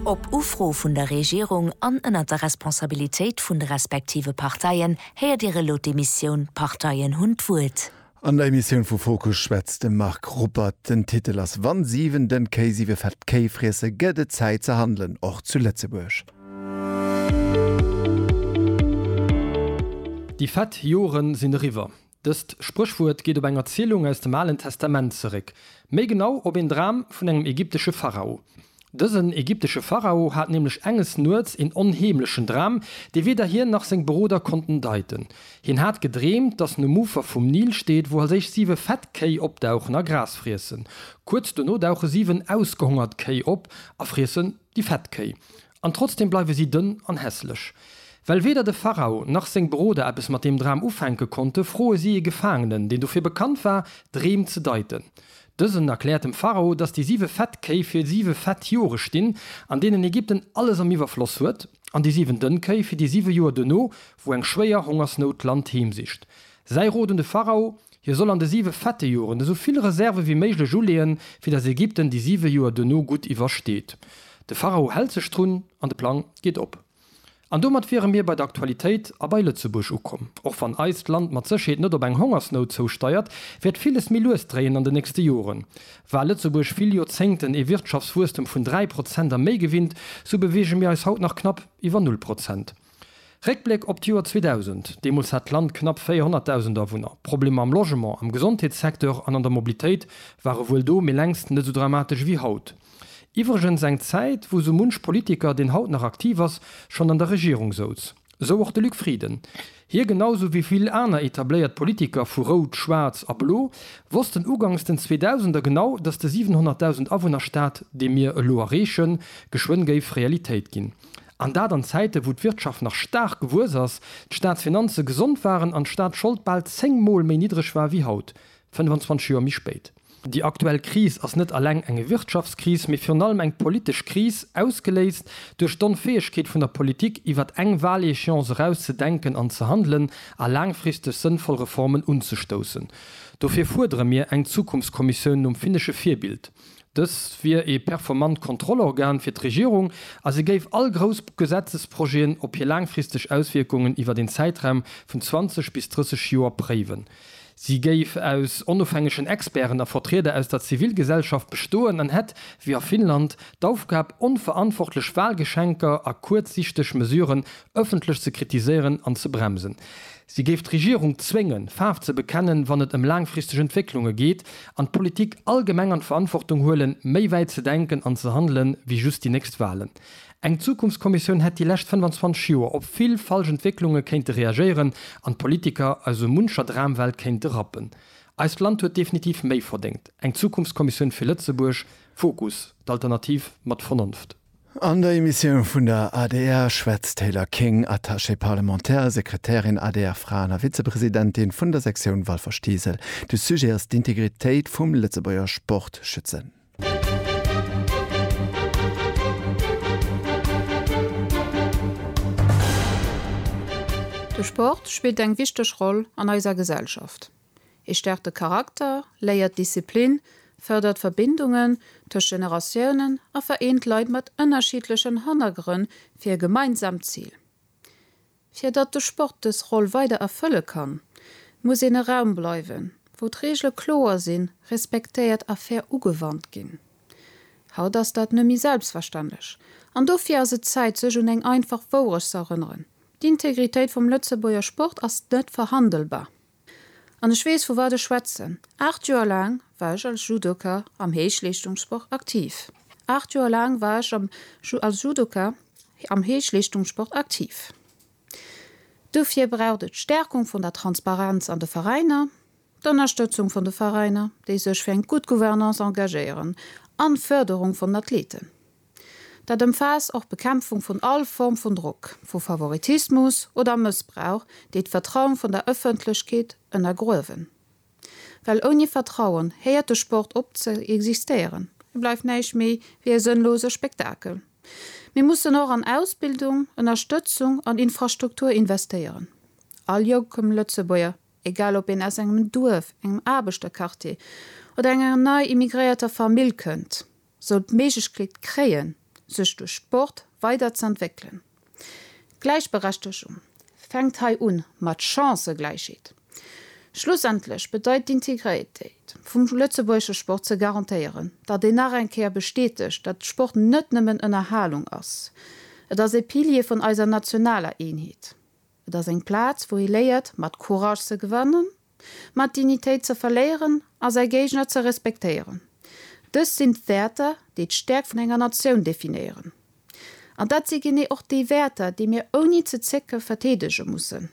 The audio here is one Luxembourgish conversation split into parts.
Op Ufro vun der Regierung an ënnert der Responsabilitéit vun de respektive Parteien héiert Dir elo d'Emissioun D'Parteien hunn d'Wuert. An der Emissioun vu Fokus schwätzt de Marc Ruppert. Den Titel ass Wann Siwen den Kéi siwe fett Kéi friesse gëtt et Zäit ze handelen, och zu Lëtzebuerg. Déi fett Joren sinn eriwwer. Dëst Spréchwuert geet op eng Erzielung aus dem Alen Testament zeréck, méi genau op een Dram vun engem ägyptesche Pharao. Dësen ägyptesche Pharao hat nämlech enges Nuets een onheemlechen Dram, dee weder hien nach seng Beroder konnten deiten. Hien hat gedreemt, datt en um Ufer vum Nil steet, wou als éischt siwe fett Kéi opdauchen a Gras friessen. Kuerz dono dauche siwen ausgehongert Kéi op a friessen déi fett Kéi. An trotzdem bleiwe si dënn an hässlech. Well weder de Pharao nach seng Beroder eppes mat deem Dram ufänke konnte, froe si ee Gefaangenen, deen dofir bekannt war, Dreem ze deiten. Dësen erkläert dem Pharao, dass déi siwe fett Kéi fir siwe fett Jore stinn, an deenen Ägypten alles am Iwwerfloss huet, an déi siwen dënn Kéi fir déi siwe Joer duerno, wou eng schwéier Hongersnout d'Land heemsicht. Säi Rot un de Pharao, Hie soll an de siwe fette Joren esou vill Reserve wéi méiglech uleeën, fir datt Ägypten déi siwe Joer duerno gutt iwwersteet. De Pharao hält sech drun an de Plang geet op. An domat wiere mir bei der Aktualitéit a bei Lëtzebuerg ukomm. Och wann eist Land mat Sécherheet net op eng Hongersnout zousteiert, wäert villes méi lues dréien an de nächste Joren. War Lëtzebuerg vill Joerzéngten ee Wirtschaftswuesstem vun dräi Prozent a méi gewinnt, sou beweege mir eis haut nach knapp iwwer null Prozent. Réckbléck op d'Joer 2000, Deemools hat d'Land knapp 400.000 Awunner. Problemer am Logement, am Gesondheetssecteur an an der Mobilitéit ware wuel do, mee längst net esou dramatesch ewéi haut. Iwwregens eng Zäit, wou sou munch Politiker, deen haut nach aktiv ass, schonn an der Regierung souz. Esou och de Luc Frieden. Hie, genau esou wéi vill aner etabléiert Politiker vu Rout, Schwaarz a Blo, wossten ugangs den Zweedausender genau, datt de 700.000 Awunner-Staat, dee mir elo erreechen, geschwënn géif Realitéit ginn. An dat an Zäiten, wou d'Wirtschaft nach staark gewuess ass, d'Staatsfinanze gesond waren an d'Staatsschold bal zéng Mol méi niddreg war wéi haut, 25 Joer méi spéit. Déi aktuell Kris ass net alleng eng Wirtschaftskris, mee virun allem eng politesch Kris, ausgeléist duerch d'Onfäegkeet vun der Politik, iwwert eng Wahléchéance eraus ze denken an ze handelen a laangfristeg sënnvoll Reformen unzestoussen. Dofir fuerdere mir eng Zukunftskommissioun nom finnesche Virbild. Dës wier ee performant Kontrollorgan fir d'Regierung a se géif all grouss Gesetzesprojeten op hir laangfristeg Auswierkungen iwwer een Zäitraum vun 20 bis 30 Joer préiwen. Si géif aus onofhängegen Experten a Vertrieder aus der Zivilgesellschaft bestoen an hätt, wéi a Finnland, d'Aufgab, onverantwortlech Walgeschenker a kuerzsichteg Mesuren ëffentlech ze kritiséieren an ze bremsen. Si géif d'Regierung zwéngen, Faarf ze bekennen, wann et ëm laangfristeg Entwécklunge geet, an d'Politik allgemeng an d'Verantwortung huelen, méi wäit ze denken an ze handelen, wéi just déi nächst Wahlen. Eng Zukunftskommissioun hätt déi lescht 25 Joer op vill falsch Entwécklunge kéinte reagéieren an d'Politiker aus esou muncher Dramwelt kéinte rappen. Eist Land huet definitiv méi verdéngt. Eng Zukunftskommissioun fir Lëtzebuerg, Fokus, d'Alternativ mat Vernonft. An der Emissioun vun der adr schwätzt d'Taylor King, Attachée parlementaire, Sekretärin, ADR-Fraen a Vizepresidentin vun der Sektioun Walfer-Steesel. De Sujet ass d'Integritéit vum Lëtzebuerger Sport schützen. De Sport spillt eng wichteg Roll an eiser Gesellschaft. Et stäerkt de Charakter, léiert d'Disziplin, fërdert Verbindungen tëscht Generatiounen a vereent Leit mat ënnerschiddlechen Hannergrënn fir e gemeinsaamt Zil. Fir datt de Sport dës Roll weider erfëlle kann, muss en e Raum bleiwen, wou d'Reegele kloer sinn, respektéiert a fair ugewannt ginn. Haut ass dat nëmme méi selbstverständlech an dofir ass et Zäit, sech un eng einfach Wourecht z'erënneren, D'Integritéit vum Lëtzebuerger Sport ass net verhandelbar. An ech weess, vu wat ech schwätzen. Aacht Joer laang war ech als Judoka am Héichleeschtungssport aktiv. Aacht Joer laang war ech am als Judoka am Héichleeschtungssport aktiv. Dofir braucht et d'Stärkung vun der Transparenz an de Veräiner, d'Ënnerstëtzung vun de Veräiner, déi sech fir eng gutt Gouvernance engagéieren, an d'Förderung vun Athleten. Dat ëmfaasst och d'Bekämpfung vun all Form vun Drock, vu Favoritismus oder Mëssbrauch, déi d'Vertrauen vun der Ëffentlechkeet ënnergruewen. Well ouni Vertrauen héiert de Sport op ze existéieren, e bleift näischt méi wéi e sënnlose Spektakel. Mir mussen och an Ausbildung, Ënnerstëtzung an Infrastruktur investéieren. All jonkem Lëtzebuerger, egal ob een aus engem Duerf, engem Aarbechterquartier oder enger nei immigréierter Famill kënnt, soll d'Méiglechkeet kréien, sech duerch Sport weider ze entwéckelen. D'Gläichberechtegung fänkt hei un, mat Chancëgläichheet. Schlussendlech bedeit d'Integréitéit vum lëtzebuergesche Sport ze garantéieren, datt een nach eng Kéier bestätegt, datt Sport net nëmmen Ënnerhalung ass, et ass ee Pilier vun eiser nationaler Eenheet. Et ass eng Plaz, wou ee léiert, mat Courage ze gewannen, mat Dignitéit ze verléieren a säi Géigner ze respektéieren. Dëst sinn d'Wäerter, déi d'Stäerkt vun enger Natioun definéieren. An dat si genee och déi Wäerter, déi mir ouni ze zécke verteedege mussen.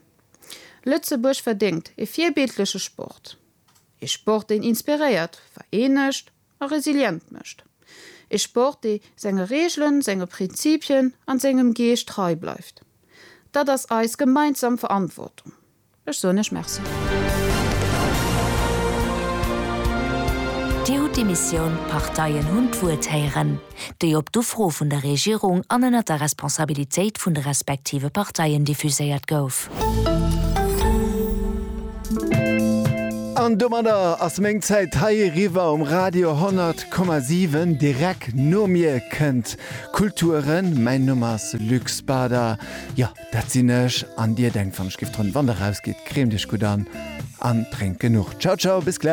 Lëtzebuerg verdéngt e virbildleche Sport. Ee Sport, deen inspiréiert, vereenegt a resilient mécht. Ee Sport, dee senge Reegelen, senge Prinzipien an sengem Geescht trei bleift. Dat ass eis gemeinsam Verantwortung. Ech soen Iech Merci. Dir hutt d'Emissioun Parteien hunn d'Wuert héieren. déi op d'Ufro vun der Regierung an ënnert der Responsabilitéit vun de respektive Parteien diffuséiert gouf. An domadder ass meng Zäit hei eriwwer um Radio 100,7. Direk no mir kënnt Kulturen. Mäin Numm ass Luc Spader, jo, dat sinn ech. An dir denkt, wann ech giff drënn, wann Der rausgitt, creemt Iech gutt an an drénkt genuch. Ciao, ciao, bis gläich.